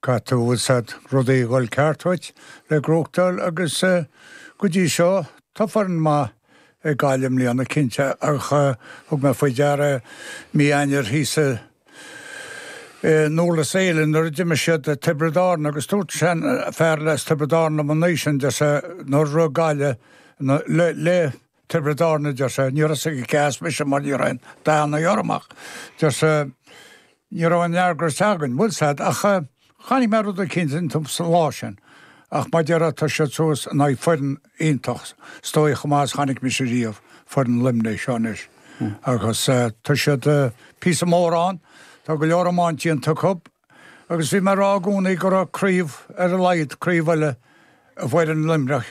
Caithfidh an-lot rudaí a dhul ceart dhuit le gnóthachtáil agus go dtí seo tá foireann maith ag Gaillimh i mbliana, cinnte, ach thug mé faoi deara mí Eanáir thíos i nDúrlas Éile nuair a d'imir siad Tiobraid Árann agus dúirt seanfhear as Tiobraid Árann liom an oíche sin, deir sé, níor rug Gaillimh le Tiobraid Árann, a deir sé. Ní raibh sé go deas, mise, mar ní raibh aon dathanna orm ach, deir sé, ní raibh aon aird orthu sa ngeam. bhfuil 'fhios a'd, ach chonaic mé rud eicínt iontu sa lá sin. Ach mar a déarfá tá siad suas in aghaidh foireann iontach, is dóigh chomh maith is chonaic mise riamh, foireann Luimnigh seo anois. Agus tá siad píosa ar an mbóthar ann. Tá go leor iomáint déanta acu. Agus bhí mé ag rá i gcónaí go raibh craobh, ar a laghad, craobh eile i bhfoireann Luimneach.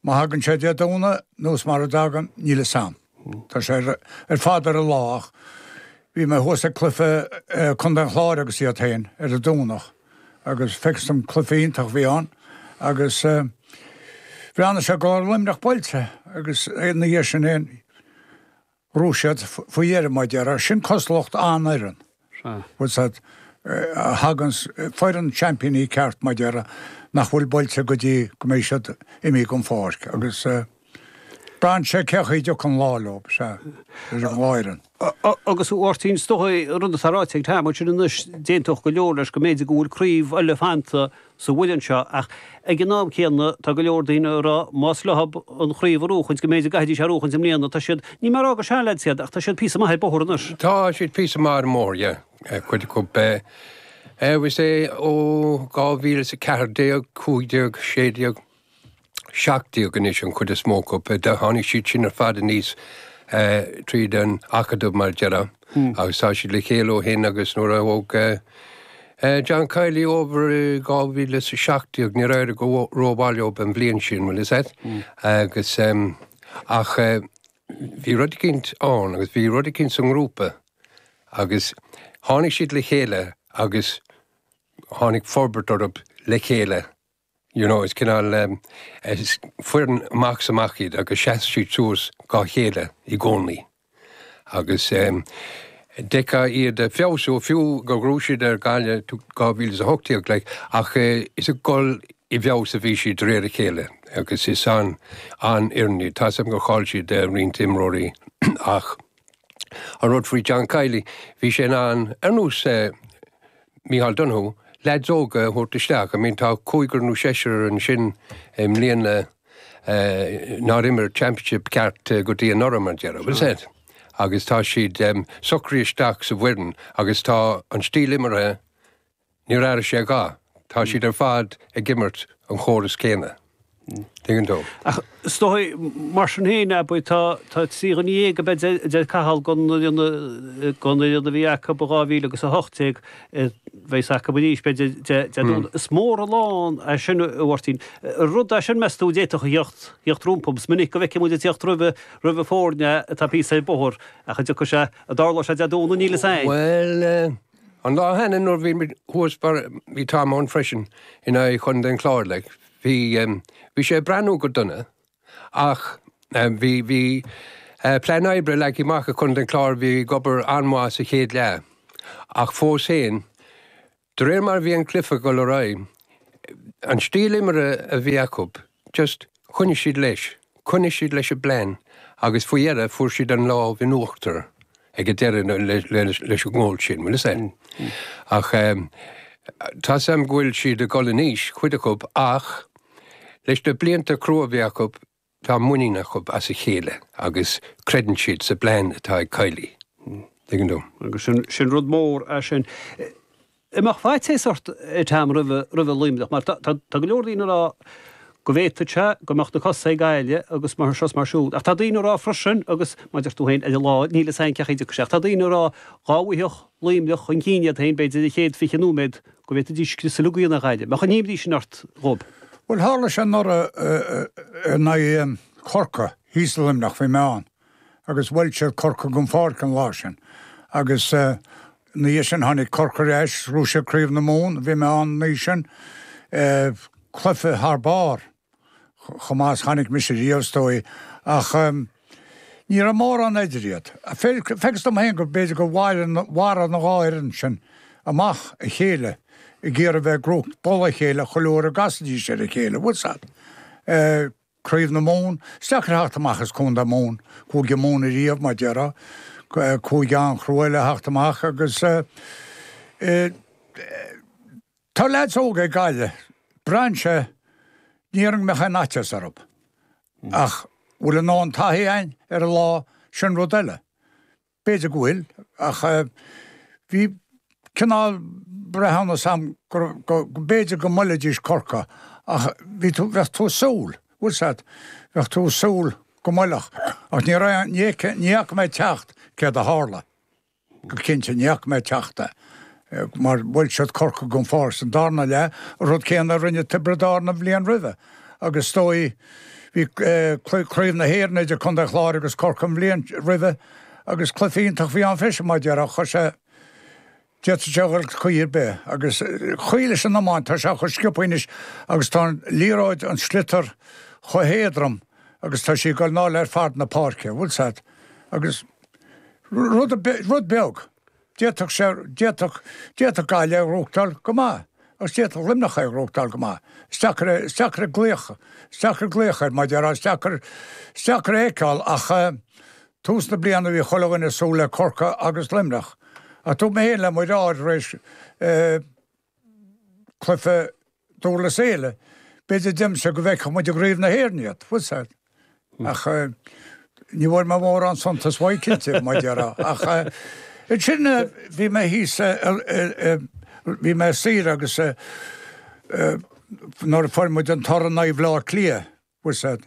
Má thagann sé Dé Domhnaigh nó mara dtagann, níl 'fhios a'm. Tá sé ar fad ar an lá ach bhí mé thuas ag cluiche Contae an Chláir agus iad féin ar an Domhnach agus feictear dhom cluiche iontach a bhí ann agus bhreathnaigh sé go raibh Luimneach buailte agus ina dhiaidh sin fhéin, Ghnóthaigh siad faoi dheireadh mar a déarfá sin cosúlacht an-fhoireann bhfuil 'fhios a'd, a dtugann foireann seaimpíní ceart mar a déarfá nach bhfuil buailte go dtí go mbeidh siad imithe den pháirc agus braitheann sé cé chaoi a dtiocfaidh an lá leo, is é ar an lá é. Agus a Mháirtín, is dócha rud atá ráite ag Tom ansin anois, d'aontódh go leor leis go mb'fhéidir go bhfuil craobh eile fanta sa bhfoireann seo ach ag an am céanna tá go leor daoine ag rá más leo an chraobh a ghnóthachtáil go mb'fhéidir go gcaithfidís í a ghnóthachtáil i mbliana, tá siad, níl mé ag rá gur seanleaids iad ach tá siad píosa maith ar bóthar anois. Tá siad píosa maith ar an mbóthar, yeah, cuid acu, eh, bhfuil 'fhios a'd, ó dhá mhíle is a ceathair déag, cúig déag, sé déag. seacht déag anois, an chuid is mó acu. Tháinig siad sin ar fad aníos tríd an Acadamh, mar a déarfá, agus tá siad le chéile ó shin agus nuair a thóg John Kiely over i 2017, níor éirigh go rómhaith leo an bhliain sin, bhfuil 'fhios a'd? Agus ach bhí rud eicínt ann agus bhí rud eicínt san ngrúpa agus tháinig siad le chéile agus tháinig forbairt orthu le chéile. You know, is cineál foireann amach is amach iad agus sheas siad suas dhá chéile i gcónaí. Agus d'fheicfeá iad ag feabhsú, fiú gur ghnóthaigh siad ar Gaillimh in 2018, like, ach is ag dul i bhfeabhas a bhí siad de réir a chéile agus is an-fhoireann iad. Tá 'fhios a'm gur chaill siad roinnt imreoirí ach. An rud faoi John Kiely, bhí sé in ann, ar nós Micheál Donoghue, leaids óga a thabhairt isteach. I mean, tá cúigear nó seisear ansin i mbliana nár imir Championship ceart go dtí anuraidh, mar a déarfá, bhfuil 'fhios a'd? Agus tá siad socraithe isteach sa bhfoireann agus tá an stíl imeartha, Níor airigh sé a dhath. Tá siad ar fad ag imirt an chórais chéanna. Tuigeann tú? Ach is dóigh, mar sin féin, b'fhéidir. Tá trí dhuine dhéag, b'fhéidir, a deir Cathal, den fhoireann a bhí acu in 2018 a bheas acu arís, b'fhéidir, déarfainn, is mór an lán é sin, a Mháirtín. An rud é sin, meas tú, a d'fhéadfadh a theacht rompu? Is minic go bhfeiceann muid ag teacht roimh foirne atá píosa ar an mbóthar ach a dtiocfaidh sé, a dtarlóidh sé, a deir tú, nó níl a fhios a'inn. Bhuel. An lá cheana nuair bhí muid thuas mar bhí Tom ann freisin in aghaidh Chontae an Chláir like. Bhí um, bhí sé ag breathnú go dona ach um, bhí, bhí uh, plean oibre leagtha amach ag Contae an Chláir bhí ag obair an-mhaith sa chéad leath. Ach fós féin, de réir mar bhí an cluife ag goil ar aghaidh, an stíl imire a bhí acu, just, choinnigh siad leis, choinnigh siad leis an bplean agus faoi dheireadh fuair siad an lámh in uachtar ag an deireadh leis an ngól sin, bhfuil fhios a'd. Ach tá 'fhios a'm go bhfuil siad ag dhul in aois, cuid acu, ach leis na blianta crua a bhí acu, tá muinín acu as a chéile agus creideann siad sa bplean atá ag Kiely, tuigeann tú. Agus sin rud mór é sin. an mbeadh faitíos ort a Tom roimh Luimneach mar tá go leor daoine ag rá go bhféadfadh sé go mbeadh na cosa ag éirí agus mar seo is mar siúd ach tá daoine ag rá freisin agus mar a deir tú féin ar an lá níl fhios agat cé chaoi a dtiocfaidh sé ach tá daoine ag rá dhá bhfaigheadh Luimneach chun cinn iad féin b'fhéidir an chéad 20 nóiméad go bhféadfaidís cosa na Gaillimhe an imníonn sin ort Tom Bhuel tharla sé anuraidh in aghaidh Chorcaigh thíos i Luimneach bhí mé ann. agus bhuail siad Corcaigh den pháirc an lá sin agus ina dhiaidh sin tháinig Corcaigh ar ais is rug siad Craobh na Mumhan, bhí mé ann an oíche sin, cluiche thar barr chomh maith is chonaic mise riamh is dóigh ach ní raibh mórán eatarthu. Facthas dom féin gur b'fhéidir gur mharaigh an dhá fhoireann sin amach a chéile ag iarraidh bheith ag rith i bpoll a chéile chuile uair a gcasaidís ar a chéile, bhfuil fhios a'd. Craobh na Mumhan, is deacair theacht amach as Contae Mumhan. Cúige Mumhan a riamh, mar déarfá. Cúige an-chrua le theacht amach as tá leaids óga ag Gaillimh, tá seans ní dhéarfainn mbeadh aon fhaitíos orthu ach bhfuil an taithí a'inn ar an lá, sin rud eile. B'fhéidir go bhfuil, ach bhí cineál breithiúnas a'm gur, go, b'fhéidir go mbuailfidís Corcaigh ach bhí tú, bheadh tú ag súil, bhfuil fhios a'd, bheadh tú ag súil go mbuailfeadh ach ní raibh aon, ní fhaca mé ag teacht céard a tharla go cinnte, ní fhaca mé ag teacht mar bhuail siad Corcaigh go háirid san darna leath, an rud céanna a rinne Tiobraid Árann an bhliain roimhe agus is dóigh bhí Craobh na hÉireann idir Contae Chláir agus Corcaigh an bhliain roimhe agus cluiche iontach a bhí ann freisin mar deir ach chuir sé d'fhéadfadh sé dhul caoi ar bith agus sé an chaoi leis an iomáint, tá sé chomh sciobtha anois agus tá an liathróid, an sliotar, chomh héadrom agus tá sí ag dul i ndáil le fad na páirce, bhfuil a fhios agat, agus rud beag. D'fhéadfadh sé, d'fhéadfadh, d'fhéadfadh Gaillimh é a ghnóthachtáil go maith agus d'fhéadfadh Luimneach é a ghnóthachtáil go maith. Is deacair é, is deacair glaoch, is deacair glaoch air, mar a déarfá, is deacair, is deacair a fheiceáil ach eh tús na bliana bhí chuile dhuine ag súil le Corcaigh agus Luimneach ach dúirt mé féin le Mairéad tar éis eh, cluife Durlas Éile. B'fhéidir deirimse go bhfeicfeadh muid i gCraobh na hÉireann iad, fós, ach ní bhfuair mé mórán suntais uaidh cinnte, mar a déarfá. Ach ansin bhí mé thíos i, bhí mé ar saoire agus nuair a fuair muid an toradh in aghaidh Bhleá Cliath, Bhuel, sea.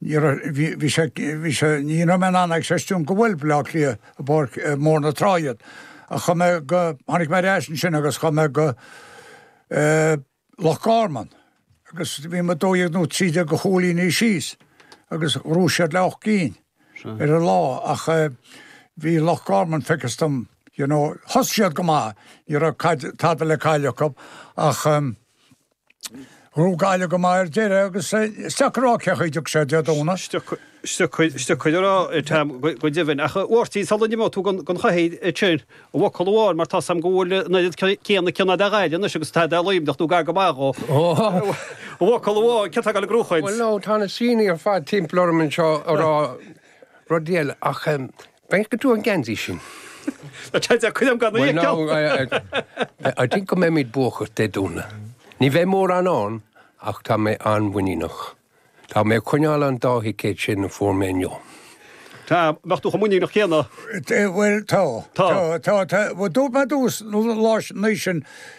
Ní raibh, bhí, bhí sé, bhí sé, ní raibh mé in ann a chreistiúint gur bhuail Bleá Cliath i bPáirc i mBóthar na Trá iad. Ach chuaigh mé go, tháinig mé ar ais ansin agus chuaigh mé go eh, Loch Garman agus bhí muid dó dhéag nó trí déag de chúilíní síos agus ghnóthaigh siad le ocht gcinn ar an lá ach eh, bhí Loch Garman facthas dom you know, thosaigh siad go maith, ní raibh caid, tada le cailleadh acu ach um, Ghnóthaigh Gaillimh go maith ar deireadh agus is deacair a rá cén chaoi a ngabhfaidh sé Dé Domhnaigh. Is deacair a rá ar Tam go deimhin. Ach a Mháirtín, sula n-imeoidh tú gan Chathaigh tinn, i bhfocal amháin, mar tá a fhios agam go bhfuil an oiread céanna cion agat ar Ghaillimh anois agus atá agat ar Luimneach nó gar go maith dhó, i bhfocal amháin, cé atá ag gabháil á ghnóthachtáil? Bhuel ná, tá na síneanna ar fad timpeall orm anseo ag rá rudaí eile ach Feicfidh tú an geansaí sin. Bhuel ná I think go mbeimid buacach Dé Domhnaigh. Ní bheidh mórán ann ach tá mé an-mhuiníneach. Tá mé ag coinneáil an dá thicéad sin a fuair mé inniu. Tá, bheadh tú chomh muiníneach céanna. Bhuel tá, tá, tá, tá. Dúirt mé dtús na haoise sin.